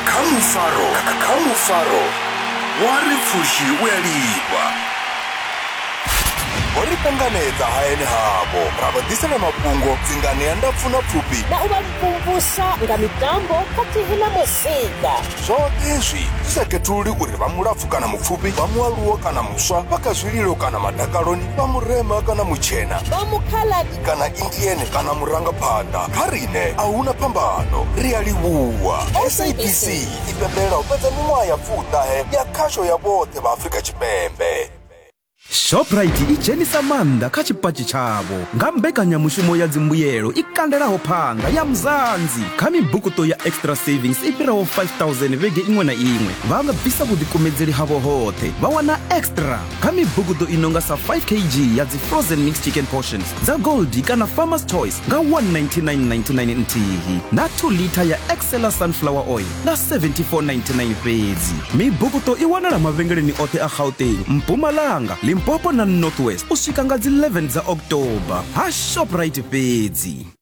Kha mufaro, kha mufaro wa ri pfushi u a lifha. Vho ri panganedza hayani havho ra vha ḓisela mafhungo dzingani ya ndapfu na pfufhi. Na u vha mvumvusa nga mitambo khathihi na muzika. Zwoṱhe hezwi zwi sa khethululi uri vha mulapfu kana mupfufhi, vha mualuwa kana muswa, vha kha zwililo kana madakaloni, vha murema kana mutshena, vha mukhala kana indiene kana murangaphanḓa kha rine a huna phambano ri a livhuwa sabc i pembelela u fhedza miṅwaha ya pfuṱahe ya khasho ya vhoṱhe vha afrika tshipembe shoprite i dzhenisa maanḓa kha tshipatshi tshavho nga mbekanyamushumo ya dzimbuyelo i kandelaho phanga ya mzanzi kha mibukuto ya extra savings i fhiraho 5000 vhege iṅwe na iṅwe vha nga bvisa vhuḓikumedzeli havho hoṱhe vha wana extra kha mibugudo i nonga sa 5 kg ya dzi frozen mix chicken portions dza goldi kana farmers choice nga 19999 nthihi na 2 lita ya excela sunflower oil nga 7499 fhedzi mibugudo i wanala mavhengeleni oṱhe a gauteng mpumalanga limpopo na northwest u swika nga dzi 11 dza october ha shoprite fhedzi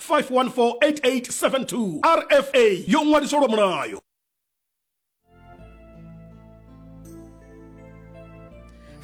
5148872 rfa yo ṅwaliswa lwa mulayo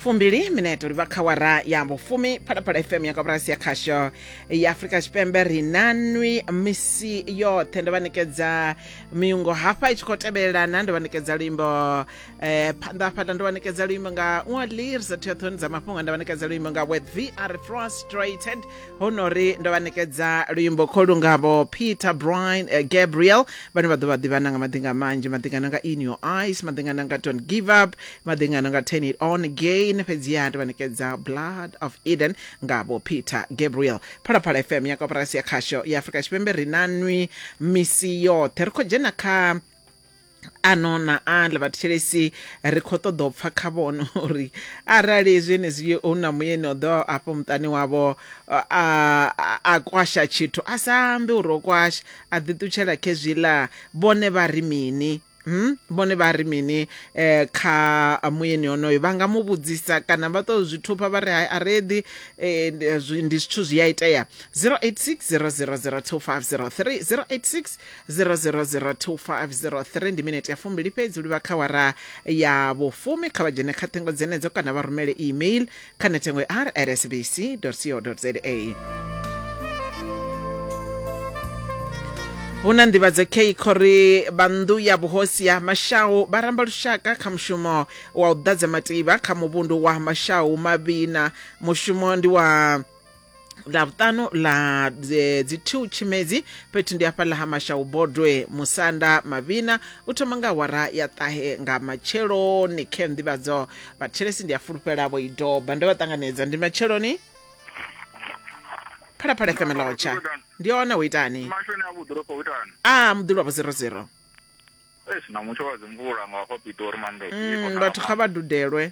fumbili mineto livha kha wara ya vhufumi phalaphala fm ya kaburasi ya khasho ya afurika tshipembe ri na nwi misi yoṱhe ndo vha ṋekedza miungo hafha i tshi khou tevhelelana ndo vha ṋekedza luimbo eh phanḓa hafhaḽa ndo vhanekedza luimbo nga ṅwalir sa theathoni dza mafhungo nda vhanekedza luimbo nga with vr frustrated ho no ri ndo vhanekedza luimbo kho lungavho peter brian uh, gabriel vhane vha ḓo vha ḓivhana nga maḓinga manzhi maḓingana nga in your eyes maḓingana nga don't give up maḓingana nga turn it on again fhedziha ndo vhanekedza blood of eden ngavho peter gabriel phalaphala fm ya koporasi ya khasho ya afrika tshipembe ri na nwi misi yoṱhe ri khou dzhena kha ano na aḽa vhathetshelesi ri khou ṱoḓa u pfa kha vhono uri arali zwenezwi hu na muyeni o ḓo afho muṱani wavho a kwasha tshithu a sa ambi uri o kwasha a ḓiṱutshela khezwiḽa vhone vha ri mini Hmm? vhone vha ri mini eh, kha muyeni onoyo vha nga mu vhudzisa kana vha tou zwi thupha vha ri hai a reḓi eh, ndi zwithu zwi a itea 086 000 2503 086 0002503 ndi minete ya fumbili fhedzi livha kha wara ya vhufumi kha vha dzhene kha ṱhengo dzenedzo kana vha rumele email kha nethengo ya rsbc co za hu na nḓivhadzo kei khori vhanḓu ya vhuhosi ya mashau vha ramba lushaka kha mushumo wa u ḓadza mativha kha muvhundu wa mashau mavhina mushumo ndi wa la vhuṱanu la dzi- dzi two tshimedzi fhethu ndi hafhaḽa ha mashau bodwe musanda mavhina u thoma nga awara ya ṱahe nga matsheloni khe nḓivhadzo vhathelesi ndi a fulufhela vho i doba ndo vha ṱanganedza ndi matsheloni phalaphala fm lotsha ndi hone ho itani mashoni a vhuḓoropo ho itani a muḓulu wavho zero zero eish na mutsho wa dzimvula nga hafha pitori manḓe Mm, vhathu kha vha dudelwe